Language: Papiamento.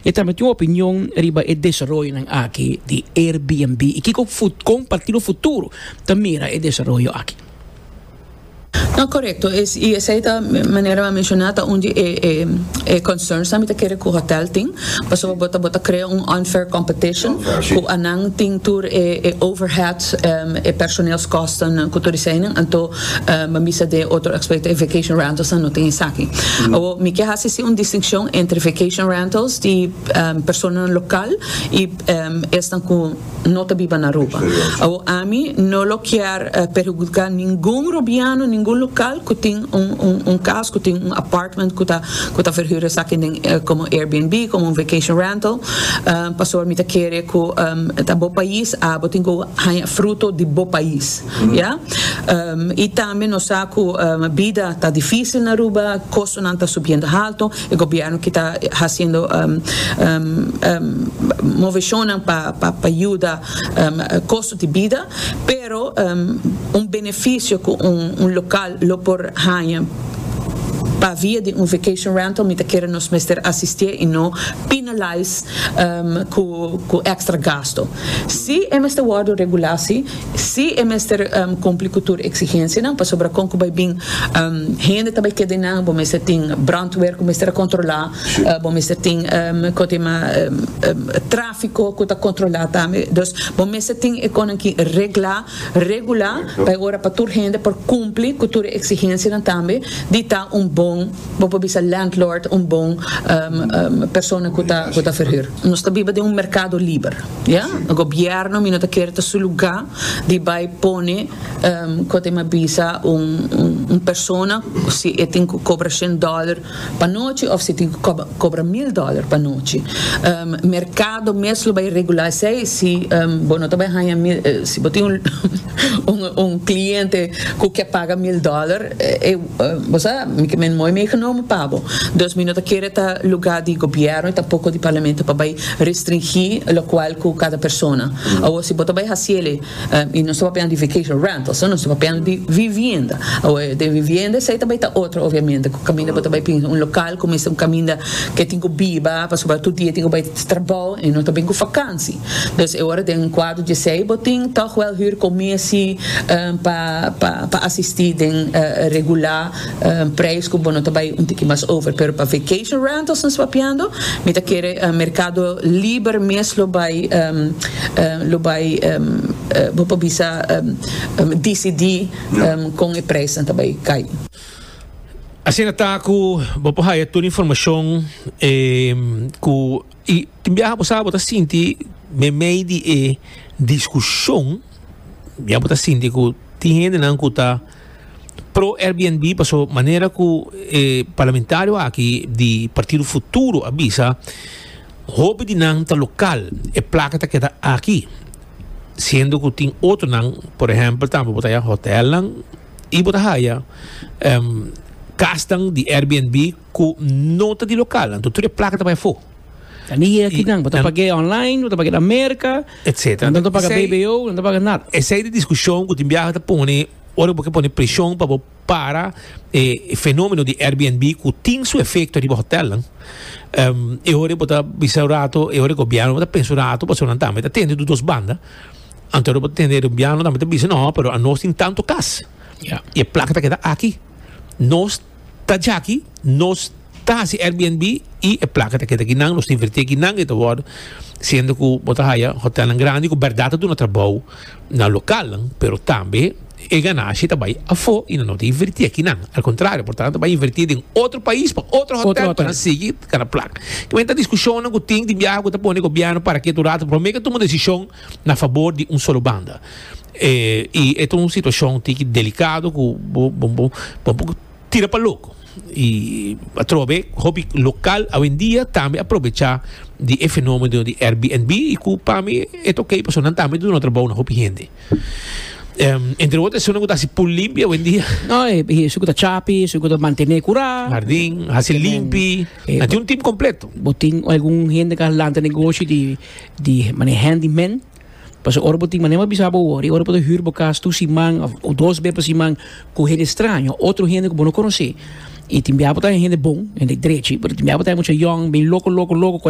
E tambe tin un opinion riba e desaroyonan aki di Airbnb i kiko kon partido futuro ta mira e desaroyo aki. No, korekto i esei ta manera mi a menshoná ta un di e concernsnan mi ta kere ku hòtèl tin pasobra bo ta bo ta krea un unfair competition ku anan tin tur e overhead e personeelskostennan ku tur eseinan anto. Mi bisa den e otro aspecto e vacation rentals nan no tin esaki. Awo mi ke hasi si un distincion entre vacation rentals di personanan local y esnan cu no ta biba na Aruba. Awo ami no lo kier perhudica ningun Rubiano, ningun local cu tin un cas, cu tin un apartment cu ta cu ta verhur esaki den como Airbnb, como un vacation rental, pasobra mi ta kere cu ta bo pais a bo tin cu haña fruto di bo pais. Ya. I tambe nos sa cu bida ta dificil na Aruba, costonan ta subiendo halto, e gobierno ki ta haciendo movecionnan pa pa yuda costo di bida, pero un beneficio cu un local lo por haña pa via di un vacation rental mi ta kere nos mester asistie y no penalize cu extra gasto. Si e mester wordo regula si. Sí, e mester kumpli ku tur eksigensianan, pasobra kon ku bai bin hende ta bai keda einan, bo mester tin bròntwer ku mester a kontrolá, bo mester tin kua ta yama tráfiko ku ta kontrolá tambe. Dus bo mester tin e kosnan ki reglá, regulá pa e ora pa tur hende por kumpli ku tur e eksigensianan tambe di ta un bon. Bo por bisa landlord un bon persona ku ta ku ta ferhür. Nos ta biba den un merkado liber, ya. Gobièrnu mi no ta kere ta su lugá di bai pone kua ta mi a bisa un un persona si e tin ku kobra shen dòler pa nochi òf si tin ku kòb kobra mil dòler pa nochi. Merkado mes lo bai regulá esei si bo no ta bai haña mil si bo tin un. Un cliente cu ke paga mil dollar bo sa mi ke mooi meegenomen pa bo. Dus mi no ta kere ta luga di gobierno y tampoco di parlamento pa bay restringi locual cu cada persona. Awor si bo ta bay haci ele y nos ta papia di vacation rentals nos ta papia di vivienda. Awor den vivienda esey ta bay ta otro obviamente cu caminda bo ta bay pinza un local cu mester un caminda ke tin cu biba pasobra tur dia tin cu bay trabao y no ta bin cu vakantie. Dos e ora den un kuarto dje sei bo tin tòg wèl hür komé si pa asistí den regulá preis ku bo no ta bai un tiki mas over. Pero pa vacation rentals nos papiando mi ta kere merkado liber mes lo bai lo bai bo por bisa disidí kon e preisnan ta bai kai. Asina ta ku bo por haya tur informashon ku. I tin biaha bo sa bo ta sinti meimei di e diskushon biaha bo ta sinti ku tin hendenan ku ta pro Airbnb paso manera ku e parlamentario aki di Partido Futuro a bisa hopi di nan ta lokal e plaka ta keda aki siendo ku tin otronan por ehèmpel tambe bo ta haya hotelnan i bo ta haya kasnan di Airbnb ku no ta di lokal anto tur e plaka ta bai afó. Ta ni e akinan, bo ta pag'é online, bo ta pag'é na Merka, Etcétera. nan ta paga Esei- BBO, nan ta paga nada. Esei di diskushon ku tin biaha ta pone ora ku bo ke pone preshon pa bo para e fenomeno di Airbnb ku tin su efekto riba hotelnan. Em, e ora bo ta bisa un rato, e ora gobièrnu bo ta pensa un rato pasobra nan tambe ta tende di dos banda. Anto ora bo ta tende gobièrnu tambe ta bisa no, pero a nos tin tantu kas Ya. i e plaka ta keda aki. Nos Ta djaki nos ta hasi Airbnb y e placa ta keda aki nan, nos ta inverti aki nan y ta worde siendo cu bo ta haya hotelnan grandi cu berdad ta duna trabao na localnan pero tambe e ganashi ta bay afo y nan no ta inverti aki nan al contrario por tanto ta bay inverti den otro pais pa otro hotel pa nan sigui cana placa kimen ta discusionnan cu tin di biaha cu ta pone gobierno para ketu rato prome ke tuma decision. na fabor di un solo banda y e ta un situacion tiki delicado cu bo bo bo tira pa loco y atrobe hopi local awendia tambe a probecha di e fenomeno di Airbnb y cu pa mi e ta ok pasobra nan tambe a duna trabou na hopi hende entre otro esun cu ta haci pul limpi awendia esun cu ta chapi esun cu ta mantene cura hardin haci limpi nan tin un team completo bo tin algun hende cu a lanta negoshi di. di mane handy man pasobra ora bo tin mane a bisa bo wori ora bo ta hür bo kas tur siman of dos be pa siman ku hende straño otro hende ku bo no konosé i tin bia bo ta hende bon hende drechi pero tin bia bo ta mucha yòn bin loko loko loko.